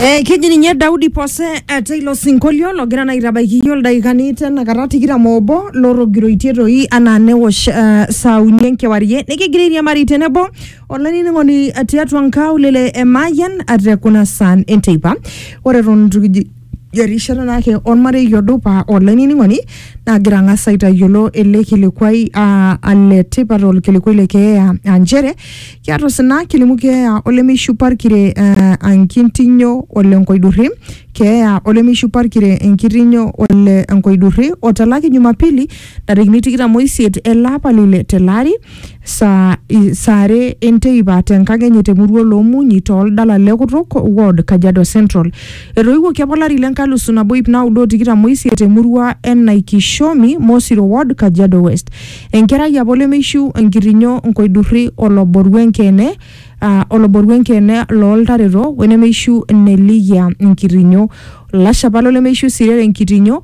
Eh, keji ninye Daudi Pose eh, teilo sinkolio logira naa aitabaiki iyiook ildaikani tenakata tikitam obo lorrogiroitie toi anaa newosh eh, saa uni enkewarie nikigira airiamari tenebo olainining'oni eh, tiatua nkaulele e Mayian eh, te kuna saan enteipa ore eton itu kiji erishata naake ormarei odupa olainining'oni nagira ang'as aitayiolo ele kilikuai aa ale tipat olkilikuai le keeya aa nchere kiata osina kilimu keeya olemeishupa irkire eh, enkitinyo ole nkoidurri keeya olemeishupa irkire enkitinyo ole enkoidurri otalaki jumapili ntarikini tikitam oisiet ele apa lile tele ari saa i, saa are enteipa te nkang enye te murua Oloomunyi too ldala le Kutuk ward Kajiado Central. Etoiwuoki apa olari le nkalusu nabo iip naudo o tikitam o isiet te murua e Naikishomi, Mosiro ward Kajiado West. Enkerai apa olemeishiu, enkirinyo, nkoidurri, oloboru enkeene aa oloboru enkeene loo ltareto we nemeishiu nelikia nkirinyo. Olashe apa lolemeishiu sii rere nkitinyo.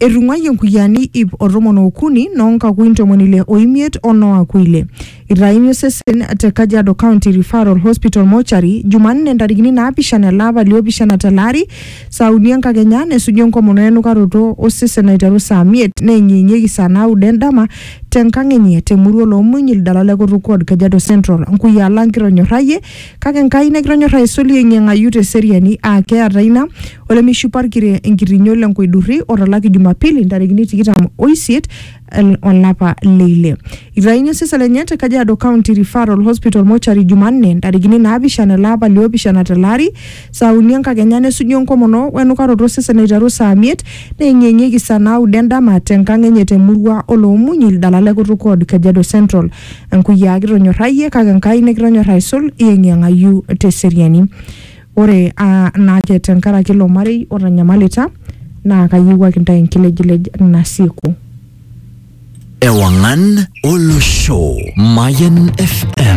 Etung'uayie nkuyiani ip o tomon ookuni noo nkakui ntomoni ile oimiet o noo akui ile. Eitayuni osesen te Kajiado County Referral Hospital Mortuary Jumanne ntarikini naapishana ele apa li opishana tele ari saa uni enkakenya nesuju enkomono enukaroto o sesen aiteru saa miet neenyeenyieki saa naudo endama te nkang enye te murua Oloomuny Ildala le Kutuk Ward Kajiado Central. Nkuyiaa lang kitonyorrayie Kake Enkai nakitonyorra aisul yeng'iyeng'ayu te seriani aa keata ina olemeishipa olkire enkitinyo le nkoidurri otalaki Jumapili ntarikini tikitam o isiet el- olapa le ile. Eitayuni osesen lenye te Kajiado County Referral Hospital Mortuary Jumanne ntarikini naapishana ele apa liopishana tele ari saa uni enkakenya nesuju enkomono we nukaroto osesen aiteru saa miet neyeng'iyeng'ieki saa naudo endama te nkang enye te murua o Loomunyi ildala le Kutuk Ward Kajiado Central. Enkuyiaa kitonyorrayie kake Enkai nikitonyor aisul iyeng'iyeng'ayu te seriani. Ore aa naa ake tenkaraki ilo marei otanyamalita naa kayiewuaki intae enkilejilej nasieku. Ewangan Olosho Mayan FM